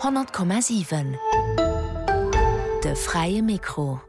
100,7 De fräie Mikro.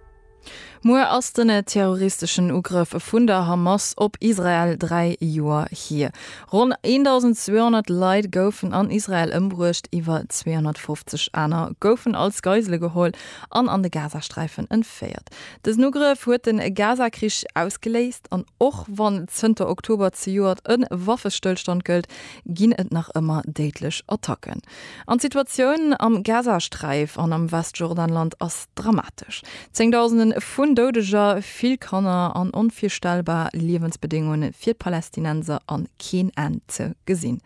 Muer ass den terroristeschen Ugrëff vun der Hamas op Israel dräi Joer hier. Ronn 1.200 Leit goufen an Israel ëmbruecht, iwwer 250 aner goufen als Geisele geholl an an de Gazasträifen entféiert. Dësen Ugrëff huet de Gazakrich ausgeléist an och wann zënter Oktober zejoert e Waffestëllstand gëllt, ginn et nach ëmmer déidlech Attacken. An d'Situatioun am Gazasträif an am Westjordanland ass dramatesch. Zéngdausende vun Doudeger, vill Kanner an onvirstellbar Liewensbedéngunge fir d'Palästinenser an keen Enn ze gesinn.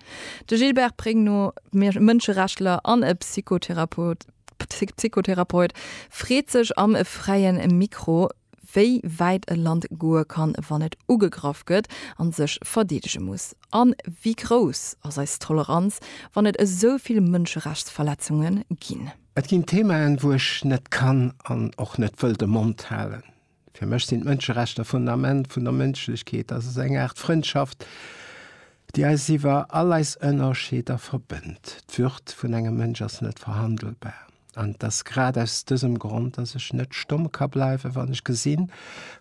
De Gilbert Pregno, Mënscherechtler an Psychotherapeut, freet sech am Fräie Mikro, wéi wäit e Land goe kann, wann et ugegraff gëtt a sech verdeedege muss, a wéi grouss ass eis Toleranz, wann et esou vill Mënscherechtsverletzunge ginn. Et ginn Themaen, wou ech net kann an och net wëll de Mond halen. Fir mech sinn d'Mënscherechter d'Fundament vun der Mënschlechkeet. Dat ass eng Aart Frëndschaft, déi eis iwwer all eis Ënnerscheeder verbënnt. D'Würd vun engem Mënsch ass net verhandelbar. An et ass grad aus dësem Grond, dass ech net stomm ka bleiwen, wann ech gesinn,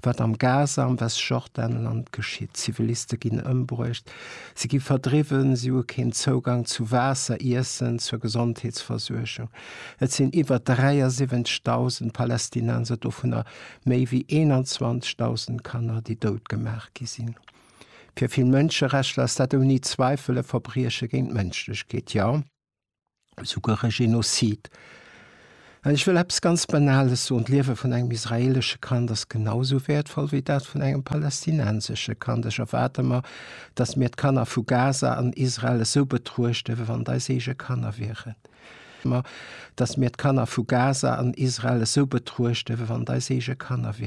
wat am Gaza, am Westjordanland geschitt. Ziviliste ginn ëmbruecht, si gi verdriwwen, si hu keen Zougang zu Waasser, Iessen, zur Gesondheetsversuergung. Et sinn iwwer 73.000 Palästinenser, dovunner méi wéi 21.000 Kanner, déi dout gemaach gi sinn. Fir vill Mënscherechtler ass dat ouni Zweifel e Verbrieche géint d'Mënschlechkeet. Jo! souguer e Genozid. An ech wëll eppes ganz Banales soen, D'Liewe vun engem israeelesche Kand ass genau esou wäertvoll wéi dat vun engem palästinensesche Kand. Ech erwaarde mer, datt mir d'Kanner vu Gaza an Israel esou betruechte wéi wann et eis eege Kanner wieren.